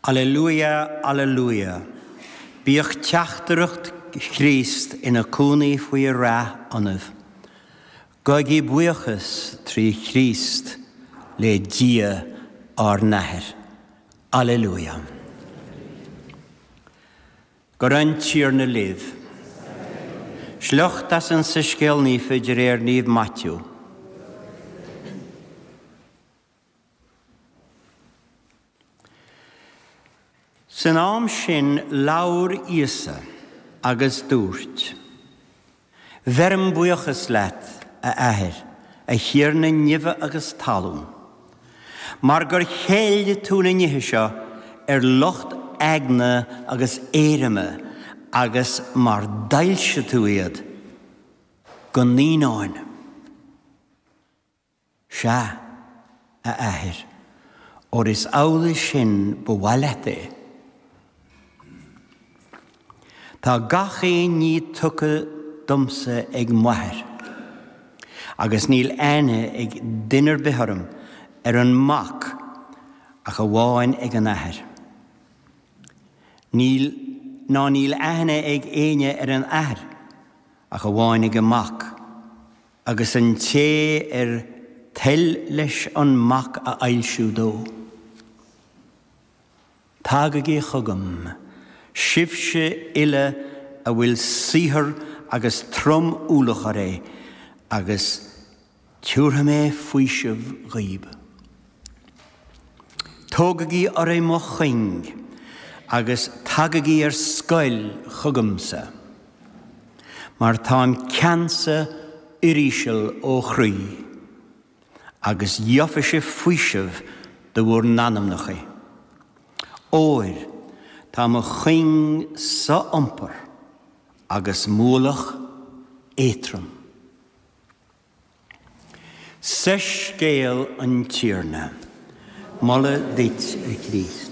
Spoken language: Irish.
Alleluia, alleluia! Bíodh teachtaireacht Chríost ina cónaí faoi rath ionaibh. Gabhaigí buíochas trí Chríost le Dia ár nAthair. Alleluia! Go raibh an Tiarna libh. Sliocht as an Soiscéal Naofa de réir Naomh Maitiú. San am sin labhair Íosa agus dúirt, Bheirim buíochas leat, a Athair, a Thiarna neimhe agus talún, mar gur cheil tú na nithe seo ar lucht eagna agus éirime agus mar d'fhoilsigh tú iad do naíonáin. Sea, a Athair, óir is amhlaidh sin ba mhaith leat é. Tá gach aon ní tugtha domsa ag m'Athair, agus níl aithne ag duine ar bith orm ar an Mac ach amháin ag an Athair. Níl, ná níl aithne ag éinne ar an Athair ach amháin ag an Mac. agus an té ar toil leis an mac a fhoilsiú dó, Tagaigí chugam, sibhse uile a bhfuil saothar agus trom-ualach oraibh, agus tiúrfaidh mé faoiseamh dhaoibh. Tógaigí oraibh mo chuing agus tagaigí ar scoil chugamsa, mar táim ceansa uiríseal ó chroí, agus gheofaidh sibh faoiseamh do bhur n-anamnachaí. Óir tá mo chuing so-iompair agus m'ualach éatrom. Soiscéal an Tiarna. Moladh duit, a Chríost.